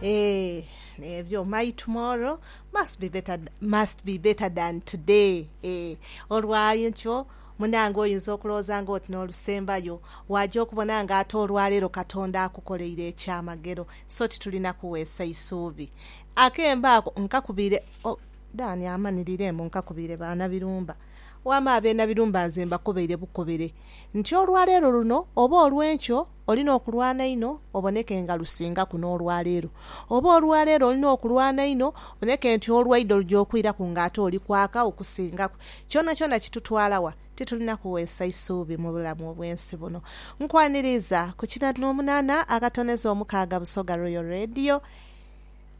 Eh, ebyo my tomorrow must be better, must be better than today eh, olwainkyo munange oyinza okulowooza nga oti n'olusembayo waaja okubona nga ate olwaleero Katonda akukoleire ekyamagero so titulina kuweesa isuubi. Akembo ako nkakubiire oh Dan amanirire mbu nkakubiire ba Nabirumba. Wama abe Nabirumba nze mbakobeire bukobere nti olwaleero luno oba olw'enkyo, Olina okulwana inho oboneke nga lusingaku n'olwa leero. Oba olwa leero olina okulwana inho oboneke nti olwaidho luja okwiraku ng'ate oli kwaka okusingaku. Kyonakyona kitutwala wa, titulina kuweesa isuubi mu bulamu obw'ensi buno. Nkwaniriiza ku kinha n'omunana akatoneza omukaaga Busoga Royal Radio.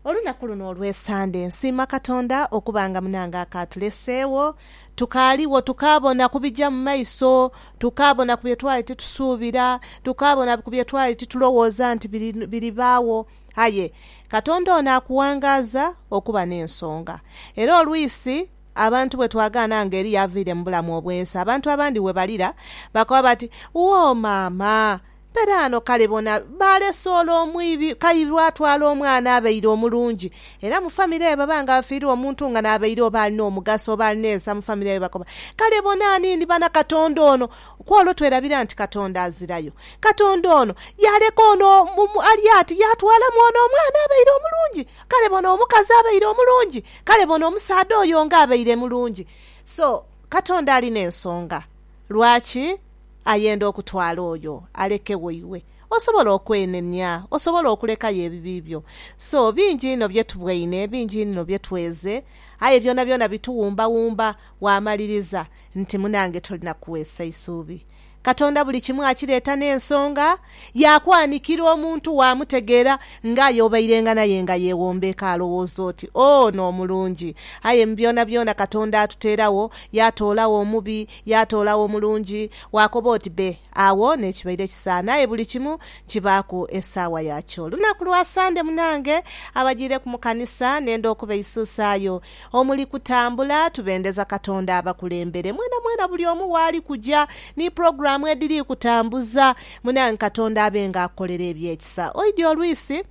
Olunaku luno olw'Esande nsiima Katonda okuba nga munange akaatuleseegho tukaaligho tukaabona ku bija mu maiso, tukaabona ku bye twali titusuubira, tukaabona ku bye twali titulowooza nti biribaagho. Aye Katonda ono akuwangaaza okuba n'ensonga. Era olwisi abantu bwe twagaana nga Eliya avaire mu bulamu obw'ensi, abantu abandi bwe balira bakoba bati, Woo maama! Peraano kale bona, baalese ole omwibi, Kairi lwatwala omwana abaire omulungi. Era mu famire eyo bwebanga bafiirwa omuntu nga n'abaire oba alina omugaso oba alina ensa mu famire eyo bakoba, Kale bona aniini bana Katonda ono! Kw'olwo twerabira nti Katonda azirayo. Katonda ono yaaleka ono ali ati, yaatwalamu ono omwana abaire omulungi. Kale bona omukazi abaire omulungi! Kale bona omusaadha oyo nga abaire mulungi! So, Katonda alina ensonga lwaki. ayenda okutwala oyo alekegho iwe osobola okwenenia, osobola okulekayo ebibi byo. So, bingi inho bye tubweine, bingi inho bye tweze, aye byonabyona bituwumbawumba waamaliriza nti munange tolina kuweesa isuubi. Katonda buli kimu akireeta n'ensonga. yaakwanikira omuntu waamutegeera ng'aye obairenga naye nga yeewombeeka alowooza oti, Ono omulungi. Aye mu byonabyona Katonda atuteeragho, yaatoolagho omubi, yaatoolagho omulungi, waakoba oti be. Agho n'ekibaire kisaana. Aye buli kimu kibaaku esaawa yakyo. Lunaku lwa Sande munange, abajiireku mu kanisa, nenda okubaisuusaayo Omuli kutambula, tubendeza Katonda abakulembere mwenamwena buli omu waali kuja, ni pulogulaamu edhiri kutambuza. Munange Katonda abe nga akukolera eby'ekisa. Oidhi olwisi?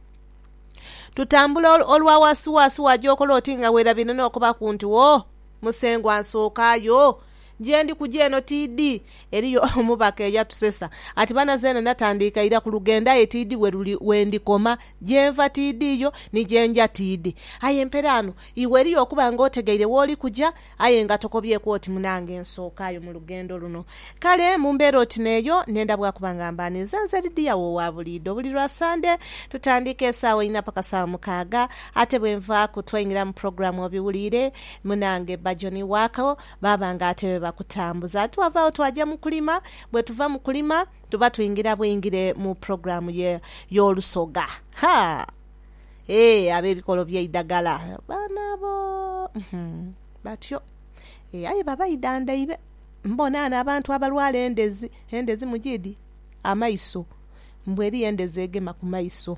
Tutambula olwa waasiwaasi waja okola oti nga weerabire n'okubaku nti, Wo! Musengwa nsookaayo. Gye ndi kuja eno tiidhi. Eriyo omubaka eyatusesa ati bana zeena natandiika ira ku lugendo aye tiidhi we luli we ndikoma. Gye nva tiidhiiyo, ni gye nja tiidhi. Aye mperaano iwe eriyo okuba nga otegeire w'oli kuja aye nga tokobyeku oti munange nsookaayo mu lugendo luno. Kale mu mbeera oti n'eyo nenda bwakuba nga mba ninze nze Lidiya wo owa buliidho. Buli lwa Sande tutandiika esaawa inha paka saawa mukaaga. Ate bwe nvaaku twaingira mu pulogulaamu obiwuliire munange Bajjo ni Waako Baaba nga ate be bakutambuza. Twava agho twaja mu kulima. Bwe tuva mu kulima, tuba twingira bwingire mu pulogulaamu ye, y'olusoga. Ha! Ee, ab'ebikolo by'eidagala, baana abo, uhmm, batyo. Ee, aye baba idhandhaibe. Mbona ghano abantu abalwala endhezi. Endhezi mugiidhi? Amaiso. Mbu eriyo endhezi egema ku maiso.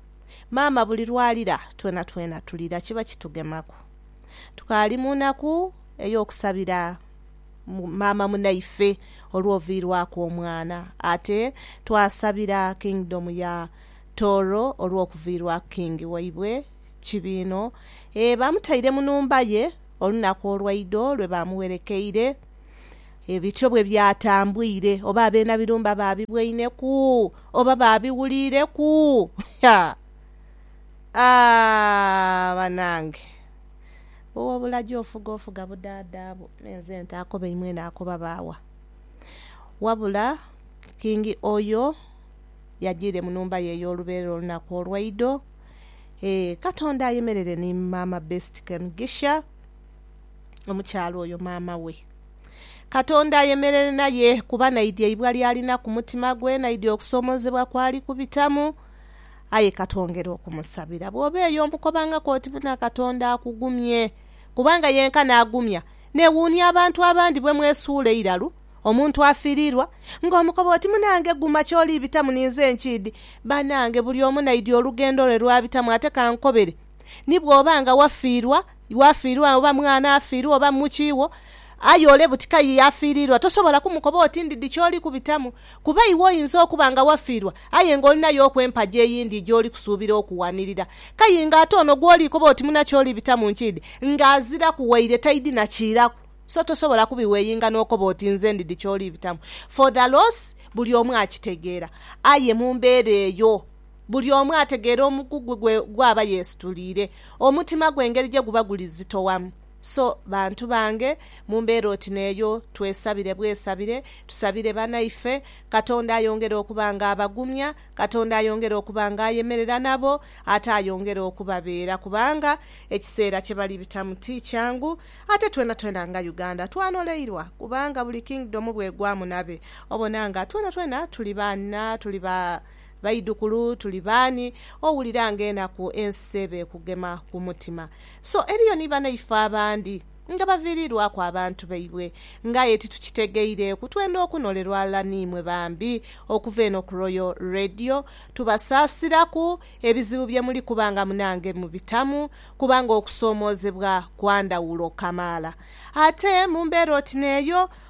Maama buli lw'alira twenatwena tulira kiba kitugemaku. Tukaali mu naku ey'okusabira maama munaife olw'oviirwaku omwana. Ate twasabira Kingdom ya Tooro olw'okuviirwaku King waibwe Kibiino. Ee, baamutaire mu nhumba ye olunaku olwaidho lwe baamuwerekeire. E bityo bwe byatambwire, oba abeena birumba baabibweineku, oba baabiwuliireku. Ha! A! Banange! Ow'obulagi ofuga ofuga budaadha bwo, me nze nte akoba imwe naakoba baawa? Wabula Kingi Oyo yajiire mu numba ye ey'oluberera olunaku olwaidho. Ee, Katonda ayemerere ni Maama Best Kemugisha. omukyala oyo maama we. Katonda ayemerere naye kuba naidhi eibwa ly'alina ku mutima gwe, naidhi okusoomoozebwa kw'ali kubitamu. Aye ka twongere okumusabira. Bw'oba eyo omukobangaku oti, Buna Katonda akugumye. Kubanga yenkana agumya. Neewuunia abantu abandi bwe mwesuula eiralu omuntu afiiriirwa, ng'omukoba oti, Munange guma ky'oli bitamu ninze nkiidhi. Banange buli omu naidhi olugendo lwe lw'abitamu ate ka nkobere ni bw'oba nga wafiirwa. Iwe afiirwa oba mwana afiirwa oba mu ki wo, aye ole buti kai y'afiiriirwa, tosobola kumukoba oti ndidhi ky'oli kubitamu. Kuba iwe oyinza okuba nga wafiirwa aye ng'olina y'oku empagi eyindi gy'oli kusuubira okuwanirira. Kai ng'ate ono gw'oli koba oti muna ky'oli bitamu nkiidhi ng'aziraku waire taidhi na kiiraku. So tosobola kubiweyinga n'okoba oti nze ndidhi ky'oli bitamu. For the loss buli omu akitegeera. Aye mu mbeera eyo. Buli omu ategeera omugugu gwe gw'aba yeesituliire, omutima gwe engeri gye guba guli zitowamu. So, bantu bange, mu mbeera oti n'eyo, twesabire bwesabire, tusabire banaife, Katonda ayongere okuba ng'abagumya, Katonda ayongere okuba ng'ayemerera nabo, ate ayongere okubabeera, kubanga ekiseera kye bali bitamu ti kyangu. Ate twenatwena nga Uganda twanoleirwa, kubanga buli kingdom bw'egwamu nabe, obona nga twenatwena tuli ba, tuli ba. Baidhukulu, tuli baani owulira nga enaku ensi eba ekugema ku mutima? So eriyo ni banaife abandi nga baviiriirwaku abantu baibwe nga aye titukitegeireeku. Twenda okunolerwa ghalala n'imwe bambi okuva eno ku Royal Radio. Tubasaasiraku ebizibu bye muli kuba nga munange mubitamu kubanga okusoomoozebwa kwa ndhawulo kamaala. Ate mu mbeera oti n'eyo,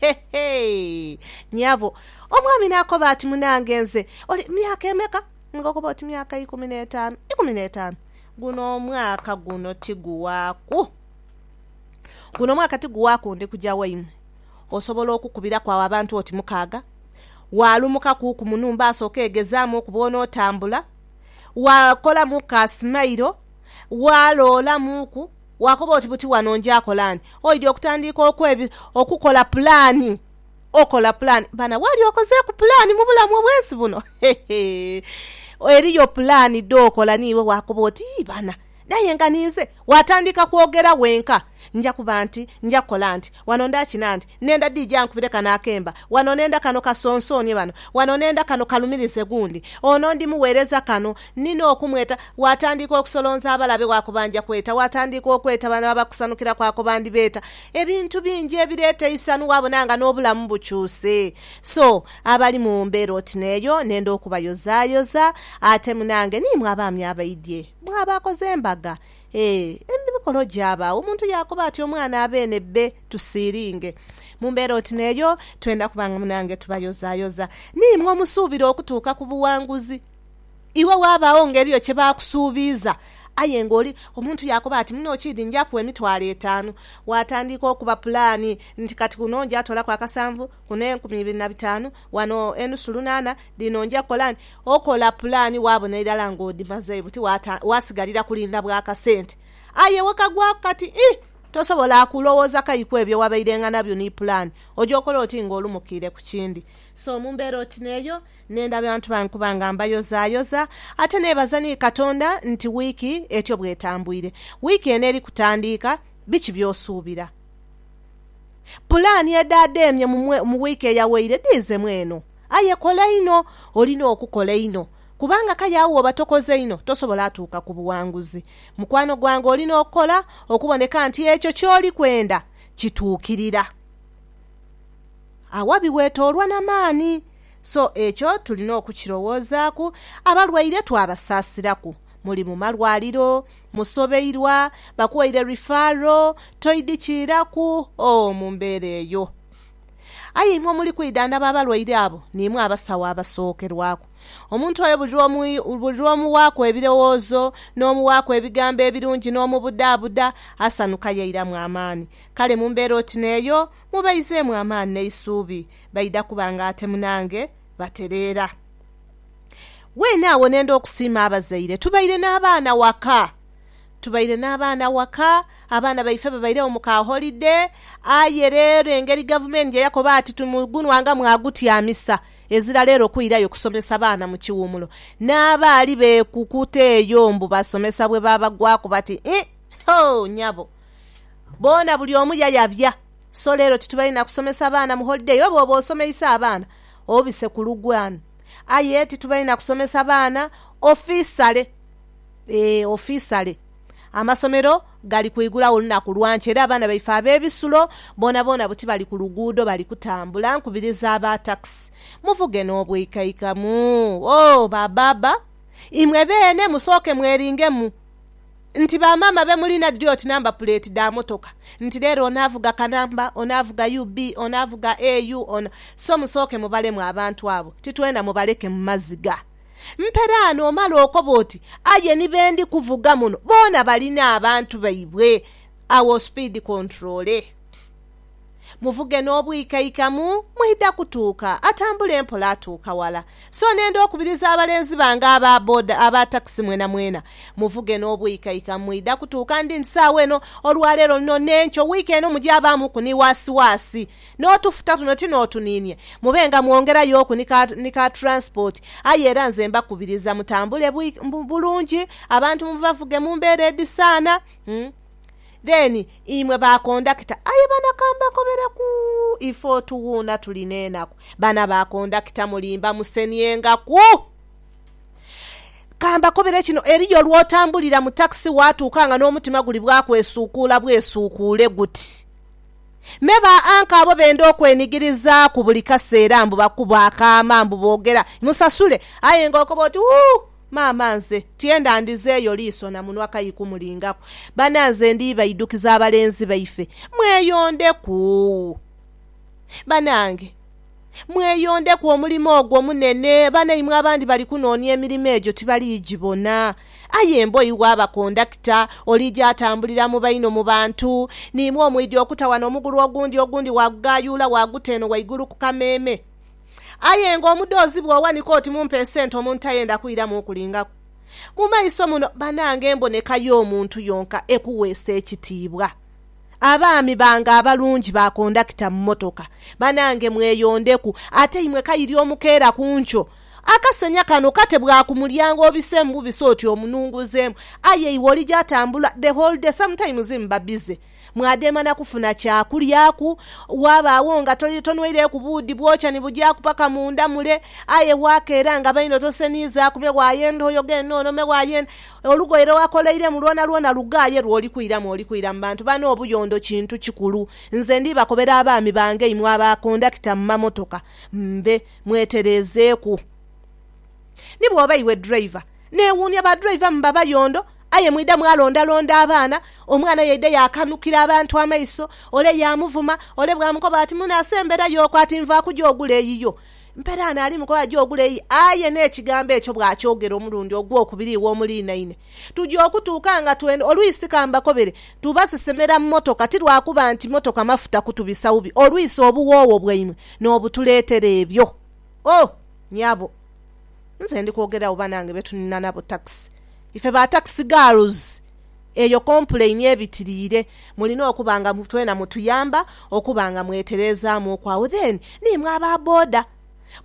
He, he! Nyabo. Omwami n'akoba ati, Munange nze, oli myaka emeka? Ng'okoba oti myaka ikumi n'etaanu. Ikumi n'etaanu? Guno omwaka guno tiguwaaku. Guno omwaka tiguwaaku ndi kuja waimwe. Osobola okukubiraku agho abantu oti mukaaga, waalumukakuuku mu nhumba asooke yegezaamu oku bw'onootambula, waakolamu ka simairo, waaloolamuuku. Waakoba oti, Buti wano njakola ni? Oidhi okutandiika okwebi, okukola pulaani. Okola pulaani. Baana, waali okozeeku pulaani mu bulamu obw'ensi buno? Hehe! Eriyo pulaani dh'okola niiwe waakoba oti, Yii baana, aye nga ninze! Waatandiika kwogera wenka, Nja kuba nti, nja kukola nti. Wano ndakina nti, Nenda DJ ankubire kano akemba wano, nenda kano kasonsoonie bano wano, nenda kano kalumirize gundi ono, ndimugheereza kano. Nina okumweta. Waatandiika okusolonza abalabe waakubanja kweta, waatandiika okweta bano abakusanukira kwaakoba ndibeeta. Ebintu bingi ebireeta eisanhu waabona nga n'obulamu bukyuse. So, abali mu mbeera oti n'eyo, nenda okubayozaayoza. Ate munange, niimwe abaami abaidhye, mwe abaakoze embaga, E, emibikolo gyabaagho, omuntu yaakoba ati, Omwana abeene be tusiiringe. Mu mbeera oti n'eyo, twendha kuba nga munange tubayozaayoza. Ni imwe omusuubira okutuuka ku buwanguzi. Iwe waabagho nga eriyo kye baakusuubiiza, aye nga oli, omuntu yaakoba ati, Muno kiidhi nja kuwa emitwalo etaanu. Waatandiika okuba pulaani nti, Kati kuno nja toolaku akasanvu, kuno enkumi ibiri na bitaanu, Wano enusu lunaana dhino nja kukola nti, okola pulaani waabona irala ng'odhimaze buti waasigalira kulinda bwa kasente. Aye wekagwaku kati ii, tosobola kulowooza kai ku ebyo wabairenga nabyo ni pulaani. Oja okola oti ng'olumukiire ku kindi. So mu mbeera oti n'eyo, nenda bantu bange kuba nga mbayozaayoza. Ate neebaza ni Katonda nti wiiki etyo bw'etambwire. Wiiki eno eri kutandiika, biki by'osuubira? Pulaani edhaadhaemye mu wiiki eyawaire dhiizemu eno. Aye kola inho. Olina okukola inho kubanga kale agho bwoba tokoze inho tosobola atuuka ku buwanguzi. Mukwano gwange olina okukola okuboneka nti ekyo ky'oli kwenda kituukirira. Awabi weetoolwa na maani. So ekyo tulina okukirowoozaaku. Abalwaire twabasaasiraku muli mu malwaliro. musobeirwa, bakuwaire rifaro, toidhi kiiraku oo mu mbeera eyo. Aye imwe omuli kwidhandhaba abalwaire abo niimwe abasawo abasookerwaku. Omuntu oyo buli lw'omuwaaku ebirowoozo, n'omuwaaku ebigambo ebirungi n'omubudaabuda, asanhuka yairamu amaani. Kale mu mbeera oti n'eyo mubaizeemu amaani n'eisuubi, baidha kuba ng'ate munange batereera. Weene agho ne ndha okusiima abazaire. Tubaire n'abaana waka. Tubaire n'abaana waka, abaana baife babairegho mu ka holide. Aye reero engeri gavumenti gye yakoba ati tumugunwa nga mwagutyamisa, ezira reero kwirayo kusomesa baana mu kiwumulo. N'abaali beekukuta eyo mbu basomesa bwe baabagwaku bati, Ih, ho, nyabo! Boona buli omu yayabya. So leero titubalina kusomesa baana mu holiday. Oba oba osomeisa abaana obise ku lugwano. Aye titubalina kusomesa baana ofisale. Eeh ofisale. Amasomero gali kwigulagho lunaku lwa nkya era abaana baife ab'ebisulo boonaboona buti bali ku luguudo bali kutambula. Nkubiriza aba takisi muvuge n'obwikaikamu. Ooh ba baaba imwe beene musooke mweringemu. Nti ba maama be mulina dhi oti namba puleeti dha motoka. Nti leero ono avuga kanamba, ono avuga UB, ono avuga AU, ono. So musooke mubalemu abantu abo. Titwenda mubaleke mu maziga. Mperaa n'omala okoba oti, Aye ni be ndi kuvuga muno boona balina abantu baibwe. Agho ospeed controle. Muvuge n'obwikaikamu, mwidha kutuuka. Atambula empola atuuka wala. So n'enda okubiriza abalenzi bange aba boda, aba takisi mwenamwena, muvuge n'obwikaikamu, mwidha kutuuka. Ndi nti saagho eno, olwa leero luno n'enkyo, wiiki eno, mugyabaamuku ni waasiwaasi. N'otufuta tuno ti n'otuniinie. Mube nga mwongerayoku ni ka, ni ka turansipoti. Aye era nze mbakubiriza mutambule bwi, bulungi, abantu mubavuge mu mbeera edhisaana. Then imwe ba kondakita aye bana kambakobereku ife otuwuuna tuli nenaku bana ba kondakita mulimba musenyengaku kambakobere kino eriyo lwotambulira mu taxi watuuka nga nomutima guli bwakwesuukuula bwesuukuule guti me ba anchor abo benda okwenigirizaaku buli kaseera mbu bakuba akaama mbu bogera musasule aye nga okoba oti ooh. Maama nze tyenda ndhizeeyo liiso na munwa kai kumulingaku. Bananze ndi baidukiza abalenzi baife. Mweyondeku. Banange. Mweyondeku omulimo ogwo munene. Banaimwe abandi bali kunoonia emirimo egyo tibali gibona. Aye mbo iwe aba kondakita, olija atambulira mu baino mu bantu, niimwe omwidhi okuta wano omugulu ogundi, ogundi waagugaayuula waaguta eno waigulu ku kameeme. Aye nga omudhoozi bw'owanika oti mumpe esente omuntu tayenda kwiramu kulingaku. Mu maiso muno banange emboneka y'omuntu yonka ekuweesa ekitiibwa. Abaami bange abalungi ba kondakita mu mmotoka, banange mweyondeku ate imwe kairi omukeera ku nkyo. Akasenya kano kate bwa ku mulyango obiseemu bubise oti omununguzeemu aye iwe oli gy'atambula the whole day sometimes mba busy. Mwadheema na kufuna kya kulyaku, wabaagho nga tonweireeku buudhi bwokya ni bugyaku paka munda mule. Aye waakeera nga baino toseniizaaku me waaya endha oyoga enh'ono, me waaya endha. Olugoye lwe wakoleiremu lwonalwona lughaaye lw'olikwiramu olikwira mu bantu bano. Obuyondo kintu kikulu. Nze ndi bakobera abaami bange imwe abakondakita mu mamotoka mbe mwetereezeeku. Ni bw'oba iwe driver, neewuunia badriver muba bayondo. Aye mwidha mwalondalonda abaana, omwana yaidha yaakanukira abantu amaiso, ole yaamuvuma, ole bwaamukoba ati, Mune asemberayo okwo ati nva kuja ogula eyiyo. Mperaano ali mu kukoba ja ogula eyiyo, aye n'ekigambo ekyo bw'akyogera omulundi ogwokubiri iwe omuliinaine. Tuja okutuuka nga twenda olwisi ka mbakobere, tubasesemera mu motoka ti lwa kuba nti motoka mafuta kutubisa bubi olwisi obuwoowo bwaimwe n'obutuleetera ebyo. Oh! Nyabo, nze ndi kwogera wo banange be tunina nabo takisi. Ife ba taxi girls eyo kompulaini ebitiriire mulina okuba nga twena mutuyamba okuba nga mwetereezaamuuku agho then ni mwe aba boda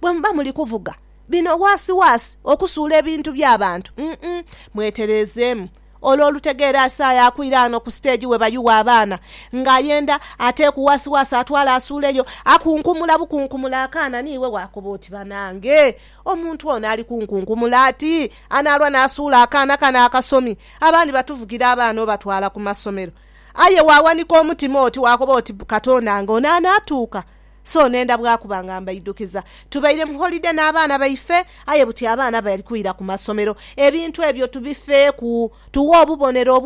bwe muba muli kuvuga bino waasi waasi okusuula ebintu bya bantu umm mwetereezeemu ole olutegeera asaaye akwire ano ku stage we bayugha abaana nga ayenda ateeku waasi waasi atwale asuuleyo akunkumula bukunkumula akaana niiwe waakoba oti banange. Omuntu ono ali kunkunkumula ati anaalwa n'asuula akaana kano akasomi. Abandi batuvugira abaana obatwala ku masomero. Aye waawanika omutima oti waakoba oti, Katonda nga ono anaatuuka? So nenda bwakuba nga mbaidhukiza. Tubaire mu holide n'abaana baife, aye buti abaana bali kwira ku masomero. Ebintu ebyo tubifeeku, tughe obubonero obwo.